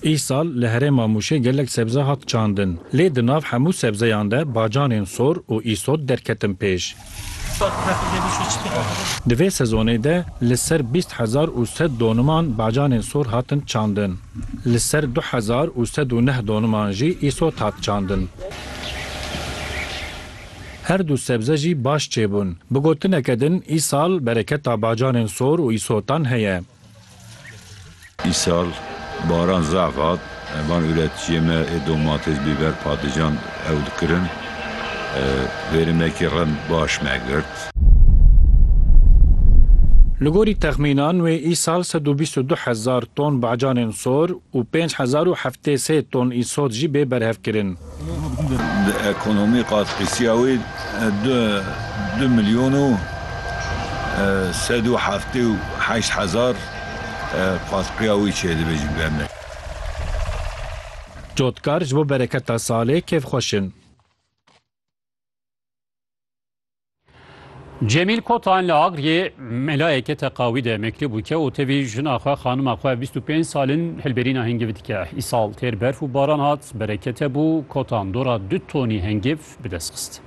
Îsal li herêma Mûşê gelek sebze hat çandin. Lê di nav hemû sebzeyan de bacanên sor û îsot derketin pêş. Di vê sezonê de li ser bîst hezar û sed doniman bacanên sor hatin çandin. Li ser du hezar û sed û neh doniman jî îsot hat çandin. Her du sebze jî baş çêbûn. Bi gotineke din, îsal bereketa bacanên sor û îsotan heye. Îsal baran zaf hat, van ûretçiyê me ê domates, bîber, patlican ew dikirin. Verimekî rem baş me girt. Li gorî texmînan wê îsal sed û bîst û du hezar ton bacanên sor û pênc hezar û heftê sê ton îsot jî bê berhevkirin. Di ekonomî qas qisiya wê du milyon û sed û heftê û heşt hezar qasqiya wî çêdibe ji ber me. Cotkar ji bo bereketa salê kêfxweş in. Cemîl Kotan li Agiriyê melayeke teqawî de mektûb bûke û tevî jina xwe xanima xwe bîst û pênc sal in hilberîna hingivî dike. Îsal têr berf û baran hat, bereket hebû, Kotan dora du tonî hingîv bi dest xist.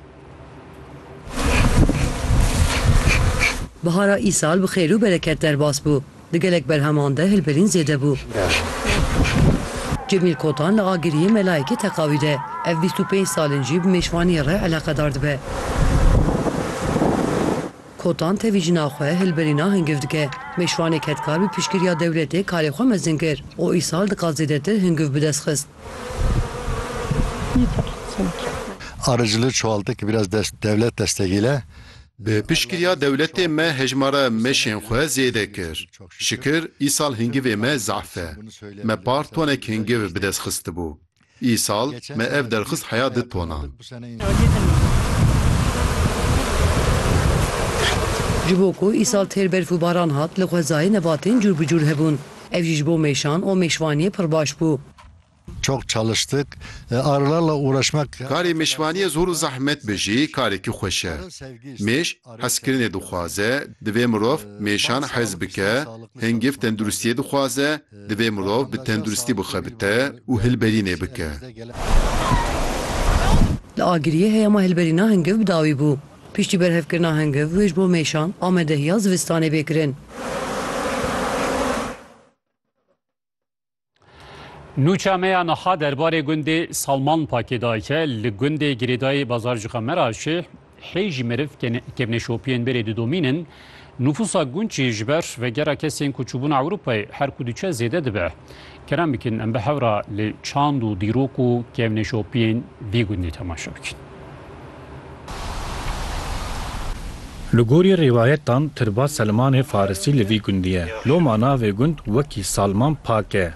Bihara îsal bi xêr û bereket derbas bû. Di gelek berheman de hilberîn zêde bû. Cemîl Kotan li Agiriyê melayekî teqawî de. Ev bîst û pênc sal in jî bi mêşvaniyê re eleqedar dibe. Kotan tevî jina xwe hilberîna hingiv dike. Mêşvanê kedkar bi piştgiriya dewletê karê xwe mezin kir û îsal dixwaz zêdetir hingiv bi dest xist. Arıcılığı çoğalttık, biraz dest, devlet destegîle. Bi piştgiriya dewletê me hejmara meşên xwe zêde kir. Şikir îsal hingivê me zehf e. Me par tonek hingiv bi dest xistibû. Îsal me ev derxist heya du tonan. Ji bo ku îsal têr berf û baran hat li xwezayê nebatên cûr bi cûr hebûn. Ev jî ji bo mêşan û mêşvaniyê pir baş bû. Çok çalıştık. Arılarla uğraşmak. Karê mêşvaniyê zor û zehmet be jî karekî xweş e. Mêş hezkirinê dixwaze, divê mirov mêşan hez bike, hingiv tenduristiyê dixwaze, divê mirov bi tenduristî bixebite û hilberînê bike. Li Agiriyê heyama hilberîna hingiv bi dawî bû. Piştî berhevkirina hingiv wê ji bo mêşan amadehiya zivistanê bê kirin. Nûça me ya niha derbarê gundê Salman Pakê dayike li gundê Girêdayê Bazarcika Meraşê hê jî meriv kevneşopiyên berê didomînin, nûfûsa gund jî ji ber vegera kesên ku çûbûn Ewropayê her ku diçe zêde dibe. Kerem bikin em bi hewra li çand û dîrok û kevneşopiyên vî gundê temaşe bikin. Li gorî rîwayetan Tirba Selmanê farisî li vî gundî ye. Loma navê gund wekî Salman Pak e.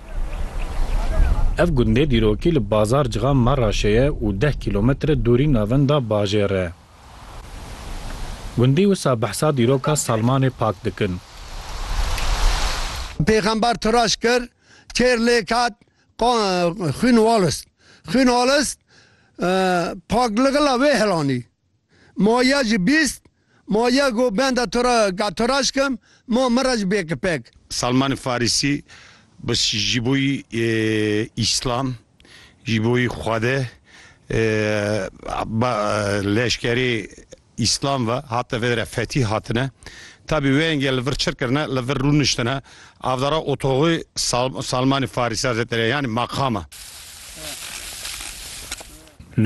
Ev gundê dîrokî li Bazar Cixa Maraşê ye û deh kîlometre dûrî navenda bajêr e. Gundî wisa behsa dîroka Salmanê Pak dikin. Pêxember turaş kir, kêr lêk hat, Xwîn Wallace Xwîn Wallace pakligila wê helanî Ma ya ji bîst Ma ya ku benda to re ka to re şikim Ma min re ji bê ki pek. Salman Farîsî Bi ji bo yî Îslam ji bo yî Xwede ba leşkerê Îslam ve hatine vê derê fetîh hatine. Tabî wê yengê li vir çir kirine, li vir rûniştine avdara otoxê Salmanî Farîsî Hezreterê yanî maqama.